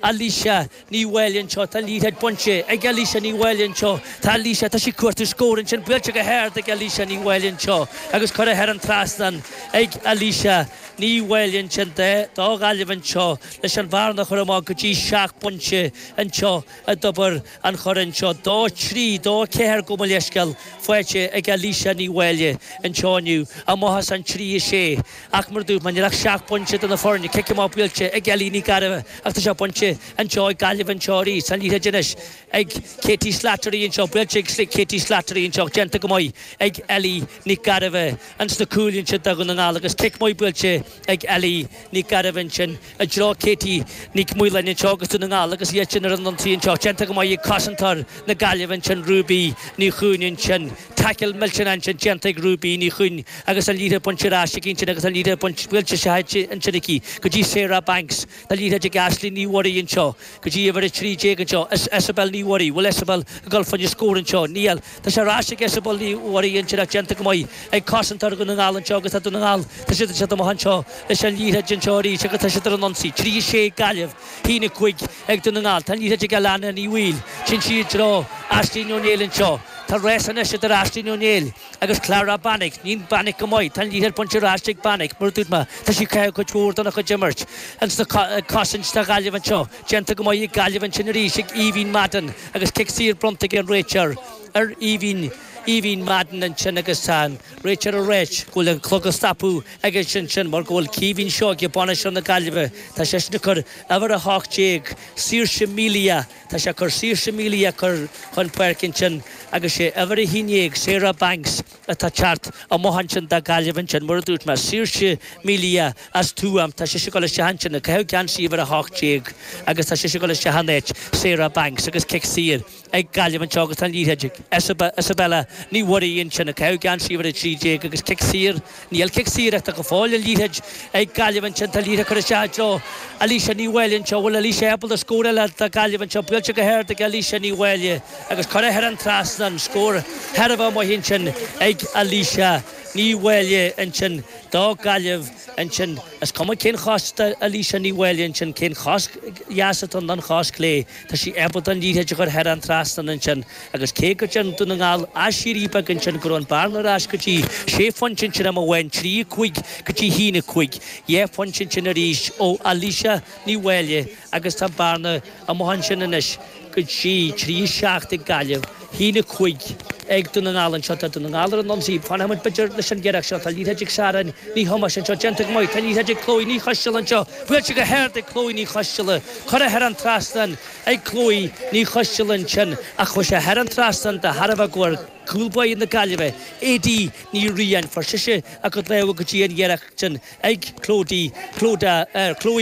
Alicia Ní Mháille anseo, tá liathróid bainte ag Alicia Ní Mháille anseo, tá Alicia, tá sí ag cuartú scór ansin, buailte go hard ag Alicia Ní Mháille anseo agus curtha thar an trasnán ag Alicia Ní Mháille ansin do do Ghaillimh anseo leis an bhearna a chur amach go dtí seacht bpointe anseo i dtreo Dtobar an Choire anseo dó trí dó ceathair gabh mo leithscéal faighte ag Alicia Ní Mháille anseo inniu amach as an trí a sé ach mar dúirt mé níl ach seacht bpointe idir na foirne cic amach buailte ag Ellie Nic Gairbhe ach tá sé bainte anseo ag Gaillimh anseo arís an liathróid anois ag Katie Slattery anseo buailte ag Katie Slattery anseo ach déanta go maith ag Ellie Nic Gairbhe ins na cúil ansin do Dhún na nGall agus cic maith buailte ag Ellie Nic Gairbh ansin i dtreo Katie Nic Mhaoláin anseo agus Dún na nGall agus iadsan ar an ionsaí anseo. Déanta go maith ag cosantóir na Gaillimhe ansin Ruby Ní Chuinn ansin. Taicil millteanach ansin déanta ag Ruby Ní Chuinn agus an liathróid bainte ar ais aici ansin agus an liathróid baint, scaoilte seachadta ansin aici go dtí Sarah Banks. Tá an liathróid ag Aisling Ní Mhuirí anseo go dtí uimhir 13 anseo. Isobel Ní Mhuirí, bhfuil Isobel ag dul faoina scór anseo? Níl. Tá sé ar ais ag Isobel Ní Mhuirí ach déanta go maith ag cosantóir Dhún na nGall anseo agus tá Dún na nGall. Tá siad ansin amach anseo leis an liathróid anseo arís agus tá siad ar an ionsaí. Trí a sé ag Gaillimh, haon a cúig ag Dún na nGall. Tá an liathróid ag Alanna Ní Bhaoill. ansin isteach i dtreo Aisling Ó Néill anseo. Tá race anois idir Aisling Ó Néill agus Clara Bannock. Clara Bannock go maith. Tá an liathróid bainte ar ais ag Bannock. Mar a dúirt mé, tá sise cuid mhór dona chuid imeartha. Ag cosaint do Ghaillimh anseo. Déanta go maith ag Gaillimh ansin arís ag Aoibhín Madden agus cic saor bronnta ag an réiteoir ar Aoibhín. Aoibhín Madden ansin agus tá an réiteoir ag rá go bhfuil an clog á stopadh aige ansin mar go bhfuil Caoimhín Seoige, bainisteoir na Gaillimhe, tá seisean ag cur uimhir a hocht déag, Saoirse Melia, tá sé ag cur Saoirse Melia a chur chun páirce ansin agus sé uimhir a haon déag, Sarah Banks. atá ag teacht amach ansin do Ghaillimh ansin, mar a dúirt mé, Saoirse Melia as Tuaim, tá sise ag dul isteach ansin, ag caitheamh geansaí uimhir a hocht déag agus tá sise ag dul isteach an áit, Sarah Banks agus cic saor ag Gaillimh anseo agus tá an liathróid ag, Isabel, Isabella Ní Mhuirí ansin, ag caitheamh geansaí uimhir a trí déag agus cic saor, níl cic saor ach tá go fóill an liathróid ag Gaillimh ansin, tá an liathróid curtha isteach anseo, Alicia Ní Mháille anseo, bhfuil Alicia ag gabháil a scóráil do Ghaillimh anseo, buailte go hard ag Alicia Ní Mháille, agus curtha thar an trasnán scór thar barr amach ansin ag Alicia Ní Mháille ansin do Ghaillimh ansin. Is cuma cén chos d'Alicia Ní Mháille ansin, cé an chos dheas atá ann nó an chos chlé, tá sí ábalta an liathróid a chur thar an trasnán ansin agus cé go dtearn Dún na nGall aiséirí beag ansin go raibh an bearna ar ais go dtí sé phointe ansin am amháin, trí, a cúig go dtí haon, a cúig, dhá phointe ansin arís ó Alicia Ní Mháille. agus tá bearna amuigh ansin anois go dtí trí a seacht ag Gaillimh, haon a cúig ag Dún na nGall anseo. Tá Dún na nGall ar an ionsaí, fanfaidh muid b'fhéidir leis an iarracht seo, tá liathróid ag Sharon Ní Thomáis anseo, déanta go maith, tá liathróid ag Chloe Ní Choisteal anseo, buailte go hard ag Chloe Ní Choisteal, curtha thar an trasnán ag Chloe Ní Choisteal ansin ach chuaigh sé thar an trasnán de thairbhe go bhfuair cúl báire na Gaillimhe, Aedín Ní Riain, fuair sise a cuid lámha go dtí an iarracht sin. ag Chloe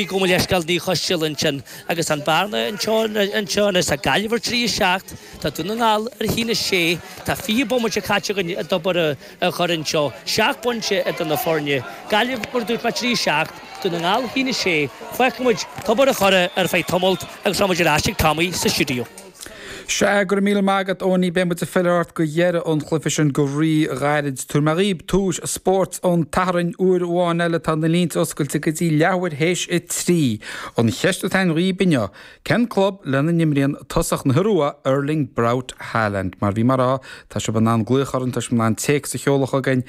gabh mo leithscéal Ní Choisteal ansin agus an bhearna anseo anseo anois tá Gaillimh ar trí a seacht tá Dún na nGall ar a haon a sé tá fiche bomaite caite againn i dTobar an Choire anseo seacht bpointe idir na foirne Gaillimh mar dúirt mé trí a seacht Dún na nGall a haon a sé fágfaidh muid Tobar an Choire ar feadh tamailt agus táimid ar ais ag Tommy sa stiúideo. Sea, go raibh míle maith agat Eoiní, beidh muid ag filleadh ort do dheireadh an chluife sin go rí-ghairid. Tabharfaidh mé dhaoib tomhais Spórt an tSathairn uair amháin eile, tá na línte oscailte go dtí leathuair théis a trí. An cheist atá againn dhaoib inniu, cén club lena n-imríonn tosaí na hIorua, Erling Braut Haaland? Mar bhí mé a rá, tá sibh in ann glaoch orainn, tá sibh in ann téacs a sheoladh chugainn,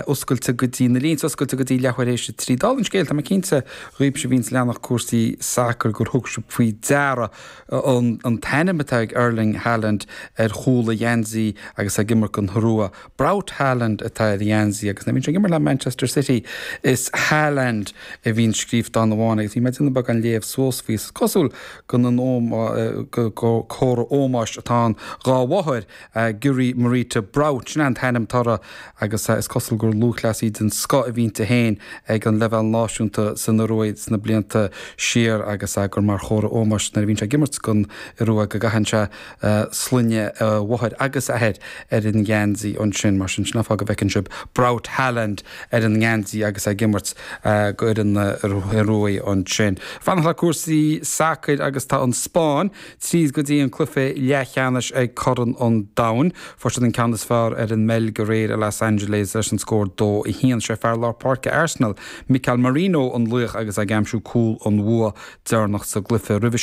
oscailte go dtí, na línte oscailte go dtí leathuair théis a trí. Dála an scéil, tá mé cinnte, dhaoibse a bhíonns ag leanacht cúrsaí sacair, gur thug sibh faoi deara, An an t-ainm atá ag Erling Haaland ar chúl a gheansaí agus é ag imirt don Iorua. Braut Haaland atá ar a gheansaí agus nuair a bhíonn sé ag imirt le Manchester City is Haaland a bhíonn scríobhta ann amháin agus bhí mé ag déanamh beagán léamh suas faoi. Is cosúil gur comhartha ómóis atá ann dhá mháthair, Gry Marita Braut sin an t-ainm atá uirthi agus is cosúil gur lúthchleasaí den scoth a bhí inti féin ag an leibhéal náisiúnta san Iorua sna blianta siar agus gur mar chomhartha ómóis nuair a bhíonn sé ag imirt don Iorua go gcaitheann sé sloinne a mháthar agus a athar ar an ngeansaí ansin. Mar sin, sin an fáth a bhfeiceann sibh Braut Haaland ar an ngeansaí agus é ag imirt don Iorua ansin. Fanacht le cúrsaí sacair agus tá an Spáinn tríd go dtí an cluiche leathcheannais ag Corn an Domhain. Fuair siad an ceann is fearr ar an mBeilg aréir i Los Angeles leis an scór 2 1. Sé fear lár páirce Arsenal, Mikel Merino an laoch agus é ag aimsiú cúl an bhua deireanach sa gcluiche roimhe sin.